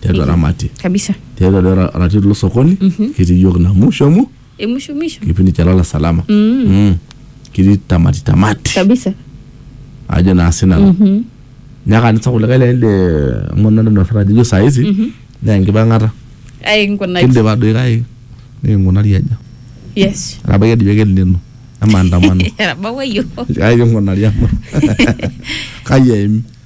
tiatua ramati kabisa tiatua doi ra- ratit lo sokoni ketii yiok na musho amu emushumisho kipindi cha lala salama Mm. kitii tamati tamati kabisa ajo naa sinanu nyaka nisa kulikae le le amu nadonyorra ajo ijo saizi naa enkipang'ata ai nkunaki kindipa doi kake nikingunari aja yes etabaiki ajo ake lino emaandamano etabawayio kake kingunari amu kai eimi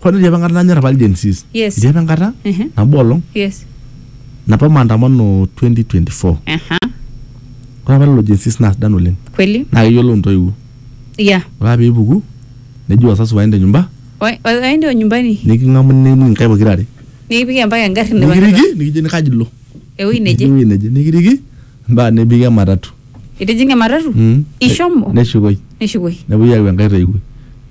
Kwani itii apa enkata nanyor apa Gen Zs? Yes. Itii apa enkata Ehe. nabo olong Yes. napa maandamano 2024. Aha. Ore apa lelo Gen Zs naa sidan oleng. Kweli? Naa keyiolo intoiwuo. Yeah. Ore apa piipuku neji wazazi waende nyumba Wa- wa- Waende wa nyumbani. niking'amu niking'amu inkaik pokira are. Nikipiki mpaka engarri nipang'ita. Nikiriki nikijo kaji ilo. ewuei neje ewuei neje nikiriki mpaka nebiki ematatu itijing'a ematatu Mm. ishomo neshukoi neshukoi nepuoi ayau enkae toiwuoi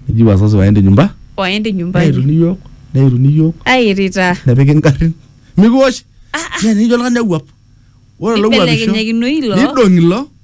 neji wazazi waende nyumba waende nyumbani neituni iyiook neituni iyiook airita nepiki ingarrin mikiwosh nijo oltung'ani awuap ore ilo wuapisho Nibelekenyekinoi ilo. nidong'i ilo